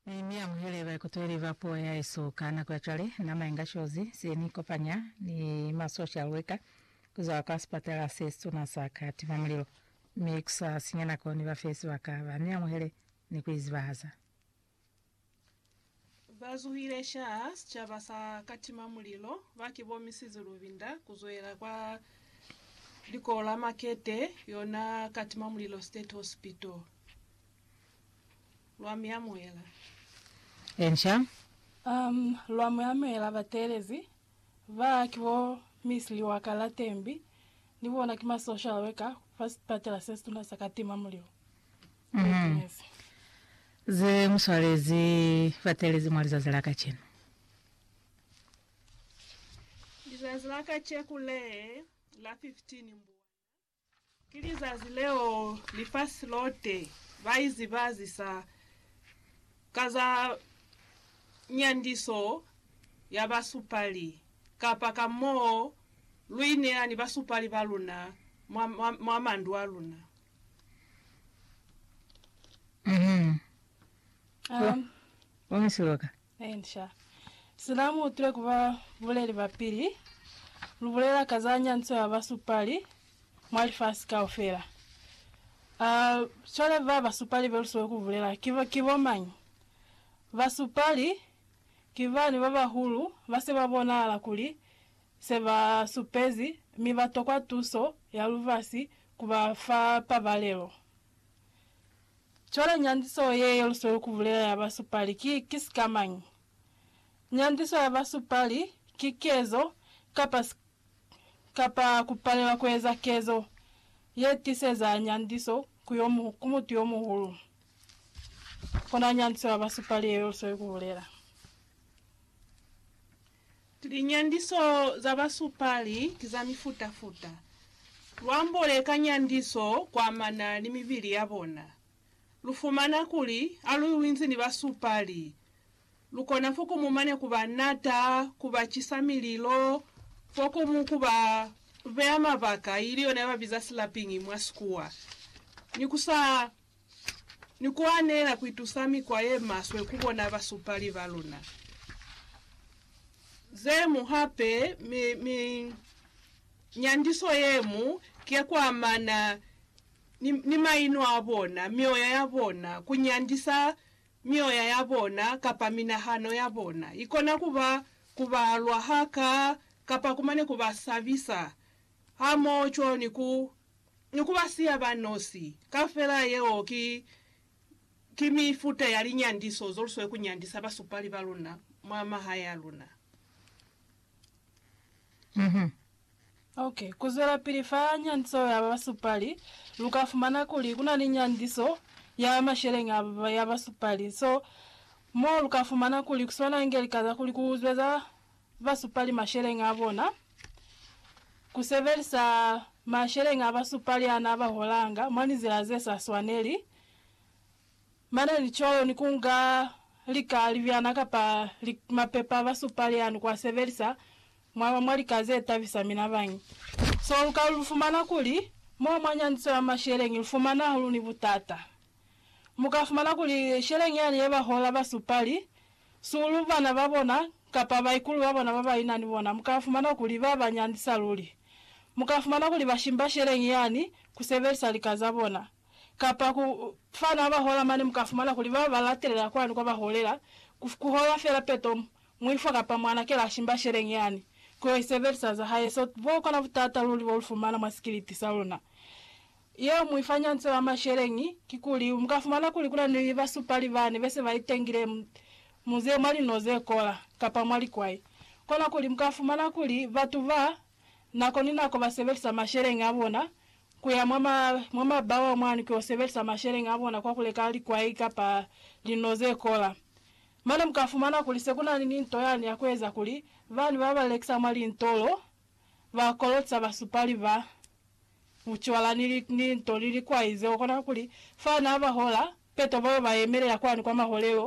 Mi mi amuhele baikutweli ba puo ya hesu. Ka nako ya cwale, nama inga shozi se ni kopanya ni ma social worker ku zwa kwa sipatala se situna sa ka tima mulilo, mi ku sa sinya nako ni ba fe sibaka ba mi amuhele ni ku izibahaza. Ba zuhile shaha sicaba sa ka tima mulilo ba ki bo Missis Lubinda ku zwela kwa likolo la Makete, yona ka tima mulilo State Hospital. Lwa mi amuhela. Enca. Um, lwa mi amuhela bateelezi. Ba ki bo Miss Liwakala Tembi, ni bona ki ma social worker fa sipatela se situna sa ka tima mulilo. Witness. Ze mu swalezi bateelezi mwa lizazi la kacenu. Lizazi la kaceku le la 15 Mbwana. Ki lizazi leo lifasi lote baizibazisa ka za nyandiso ya basupali, kapa ka moo luineya ni basupali baluna mwa mandu aluna. Amen. Amen. Inca. Sina mu utwile ku ba buleli ba pili, lu bulela ka za nyanco ya ba supali mwa lifasi kaufela. A, cwale ba ba supali be lu siwe ku bulela, ki, ki bo mañi? Ba supali ki bani ba bahulu ba se ba bonahala kuli se ba supezi mi ba tokwa tuso ya lubasi ku ba fa pabalelo. Cwale nyandiso ye yo lu sweli ku bulela ya basupali ki, ki sikamañi? Nyandiso ya basupali ki kezo, kapa, kapa ku palelwa ku eza kezo, ye tiseza nyandiso ku yo, ku mutu yo muhulu. Kona nyandiso ya basupali ye yo lu sweli ku bulela. Linyandiso za basupali ki za mifuta-futa. Lwambo le ka nyandiso kuamana ni mibili ya bona. Lu fumana kuli ha lu inzi ni basupali, lu kona fo komu mane ku ba nata, ku ba cisa mililo, fo komu ku ba beya mabaka, ili yona ya ba biza slapping mwa Sikuwa, ni ku sa ni ku anela ku itusa mikwa ye maswe ku bona basupali ba luna. Ze mu hape mi, mi nyandiso ye mu ki ya ku amana ni, ni maino a bona, mioya ya bona, ku nyandisa mioya ya bona kapa minahano ya bona. Ikona ku ba, ku ba lwa ha ka, kapa kumane ku ba sabisa, hamoho cwalo ni ku. ni ku ba siya ba nosi. Kaufela yeo ki, ki mifuta ya linyandiso zo lu sweli ku nyandisa basupali ba luna mwa mahae a luna. Ok, ku zwelapili fa nyandiso ya basupali, lu ka fumana kuli ku na ni nyandiso ya masheleñi a, ya basupali. So, mo lu ka fumana kuli ku swanange lika za kuli ku zweza ba supali masheleñi a bona, ku sebelisa masheleñi a ba supali a na ba holanga mwa linzila ze sa swaneli, mane ni cwalo ni kunga lika, libyana kapa li, mapepa a ba supali yani ku a sebelisa mwa, mwa lika ze tabisa mina bañi. So lu ka lu fumana kuli mo mwa nyandiso ya masheleñi lu fumana hahulu ni butata. Mu ka fumana kuli sheleñi yani ye ba hola ba supali Sulu, bana ba bona, kapa baikulu ba bona ba ba ina ni bona, mu ka fumana kuli ba ba nyandisa luli. Mu ka fumana kuli ba shimba sheleñi yani ku sebelisa lika za bona. Kapa ku fana ba hola mane mu ka fumana kuli ba ba latelela kwani kwa ba holela, ku, ku hola fela peto, mu, muifwa kapa mwana kela a shimba sheleñi yani, ku yo i sebelisa za hae. So, bo kona butata luli bo lu fumana mwa sikiliti sa luna. Yeo mu ifa ñanco ya masheleñi, kikuli, muka fumana kuli kuna ni basupali bani bese ba itengile mu, mu ze, mwa lin'o ze kola, kapa mwa likwai. Kona kuli muka fumana kuli batu ba, nako ni nako ba sebelisa masheleñi a bona, kuya mwa ma, mwa mabawa mwani kuyo sebelisa masheleñi a bona kwa kuleka likwai kapa lin'o ze kola. Mane muka fumana kuli se kuna ni, ni nto yani ya kueza kuli bani ba ba lekisa mwa lintolo, ba kolotsa basupali ba bucwala ni linto ni likwai zeo. Kona kuli, fa na ba hola, peto bao ba yemelela kwani kwa maholelo